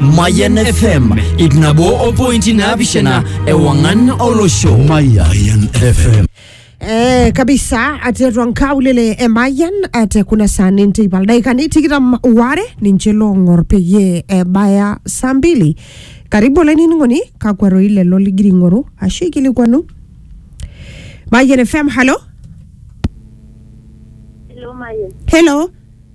Mayan FM ip nabo o pointi naapishana ewang'an olosho. Mayan FM. Eh, kabisa atetua nkaulele emayian ate kuna saa ninteipa ildaikani tikitam ware ninche loong'or peyie ebaya saa mbili karibu olainining'oni kakwa roi lelo ligira ing'oru ashu ikilikwanu Mayian FM halo Hello, Mayan. helo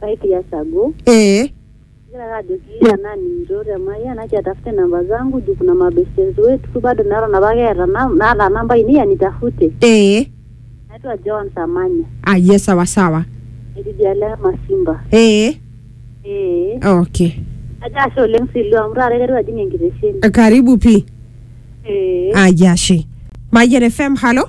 Five years ago ee Ngira ake ajoki tenaa nincho te Mayian acha atafute namba zangu juu kuna mabestes wetu bado neton apa keeta nam- naata namba ainei anitafute ee naitwa Joan Samanya aye sawa sawa etii idialo e Masimba ee ee okay ajo ashe oleng Silu amu taata aiteru ajing enkitesheni karibu pii ee aye ashe mayian fm halo